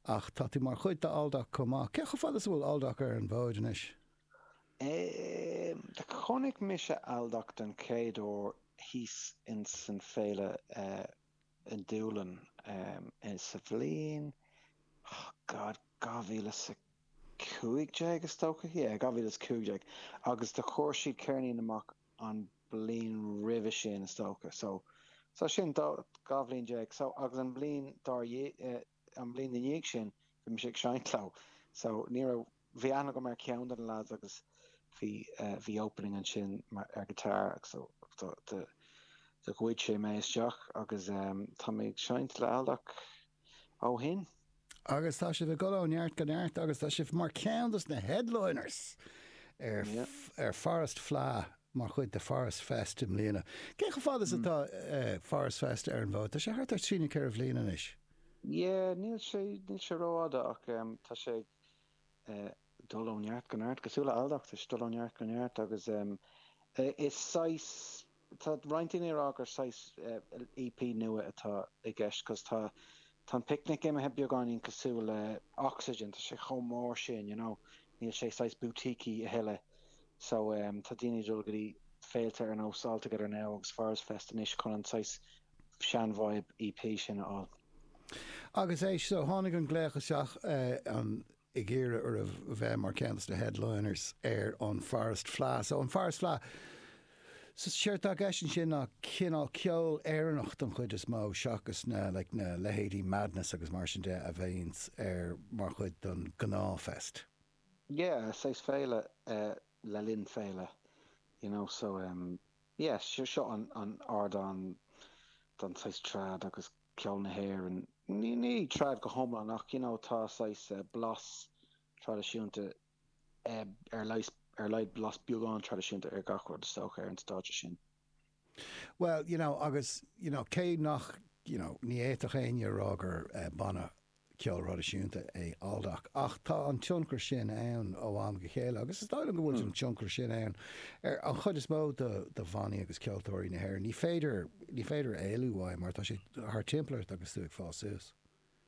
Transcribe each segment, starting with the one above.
Ach tá tú mar chuid d'Aldoc chomh maith. Cé chomh fada is atá Aldoc ar an bhfód anois? Chonaic mise Aldoc den chéad uair thíos ins an Féile i nDúlainn sa bhliain, oh god, 2015 is dócha, yeah, 2015 agus do chuir siad ceirnín amach an bhliain roimhe sin is dócha, so, so sin, dhá bhliain déag, so agus an bliain dár, An bhliain i ndiaidh sin bhí mise ag seinnt leo so ní raibh, bhí aithne agam ar cheann de na lads agus bhí, bhí opening ansin mar, ar guitar agus so do, do ghoid sé mé isteach agus tá mé ag seinnt le Aldoc ó shin. Agus tá sibh ag dul ó neart go neart agus tá sibh mar cheann dos na headliners ar, ar Forest Fleadh. mar chuid de Forest Fest i mbliana. Cé chomh fada is atá Forest Fest ar an bhfód? Tá sé thart ar trí nó ceithre bhliain anois. Yeah, níl sé, níl sé ró-fhada ach em tá sé ag eh dul ó neart go neart, cosúil le Aldoc, tá sé ag dul ó neart go neart agus em eh is saghas, tá roinnt daoine ag rá gur saghas eh EP nua atá i gceist cos tá, tá an Picnic imithe beagáinín cosúil le Oxygen, tá sé chomh mór sin, you know, níl sé saghas boutiquey a thuilleadh so tá daoine ag dul go dtí féilte ar nós All Together Now agus Forest Fest anois chun an saghas sean-vibe EP sin a fháil. Agus éist, so tháinig an glaoch isteach an ag iarraidh oraibh bheith mar ceann dos na headliners ar an Forest Fleadh. So an Forest Fleadh. Séard atá i gceist ansin ná cineál ceol Éireannach don chuid is mó seachas na like na leithéidí Madness agus mar sin de a bhíonns ar mar chuid don gnáth fest. Yeah, saghas féile eh le linn féile you know so em yeah seo seo an an ardán don saghas trad agus ceol na hÉireann, ní ní trad go hiomlán ach you know tá saghas eh blas traidisiúnta ar a laghad blas beagán traidisiúnta ar gach rud is dócha ar an stáitse sin. Bhuel, you know, agus, you know, cé nach, you know, ní fhéadfadh éinne a rá gur banna ceoil thraidisiúnta é Aldoc ach tá an tionchar sin ann ó am go chéile agus is dóigh liom go bhfuil an tionchar sin ann ar an chuid is mó de bhannaí agus ceoltóirí na hÉireann. Ní féidir, ní féidir éalú uaidh mar tá sé thart timpeall ort agus tú ag fás suas.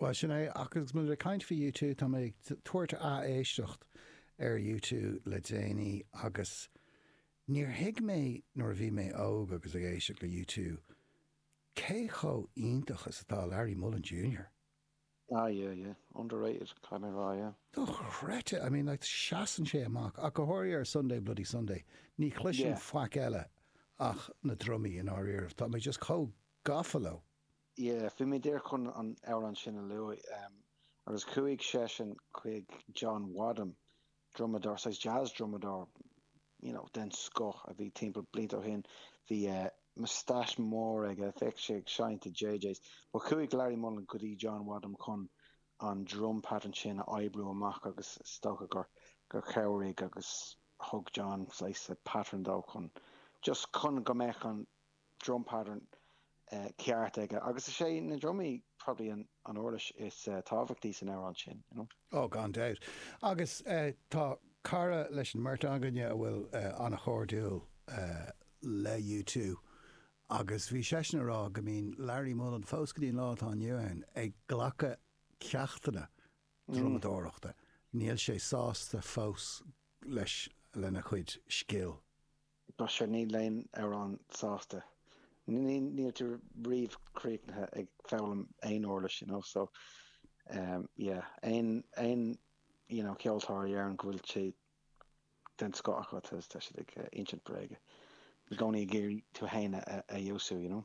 Bhuel, sin é, ach agus muid ag caint faoi U two, tá mé ag tabhairt ath-éisteacht ar U two le déanaí agus níor thuig mé nuair a bhí mé óg agus ag éisteacht le U two cé chomh iontach is atá Larry Mullen Junior. Ah yeah, yeah. Underrated, caithfidh mé a rá, yeah. Dochreidte! I mean, like, seasann sé amach, ach go háirithe ar Sunday Bloody Sunday, ní chloisim faic eile ach na drumaí, i ndáiríribh, tá mé just chomh gafa leo. yeah, bhí mé díreach chun an amhrán sin a lua agus chuaigh seisean chuig John Wadham, drumadóir, saghas jazz drumadóir, you know, den scoth a bhí timpeall blianta ó shin, bhí moustache mór aige, bheadh sé ag seinnt i JJ's, but chuaigh Larry Mullen go dtí John Wadham chun an drum pattern sin a oibriú amach agus is dócha gur, gur chabhraigh agus thug John saghas pattern dó chun, just chun go mbeadh an. drum pattern ceart aige agus is é na drumaí probably an uirlis is tábhachtaí san amhrán sin, you know. Oh, gan dabht. Agus tá cara leis an mbeirt againne a bhfuil an-chairdiúil le U two agus bhí seisean ag rá go mbíonn Larry Mullen, fós go dtí an lá atá inniu ann, ag glacadh ceachtanna drumadóireachta, níl sé sásta fós leis, lena chuid scil. Bhuel sea níl éinne riamh sásta. Níl tú riamh críochnaithe ag foghlaim aon uirlis, you know, so um yeah. Aon, aon, you know, ceoltóir a dheireann go bhfuil sé den scoth acu, tá siad ag insint bréaga. I gcónaí ag iarraidh tú fhéin a fheabhsú, you know.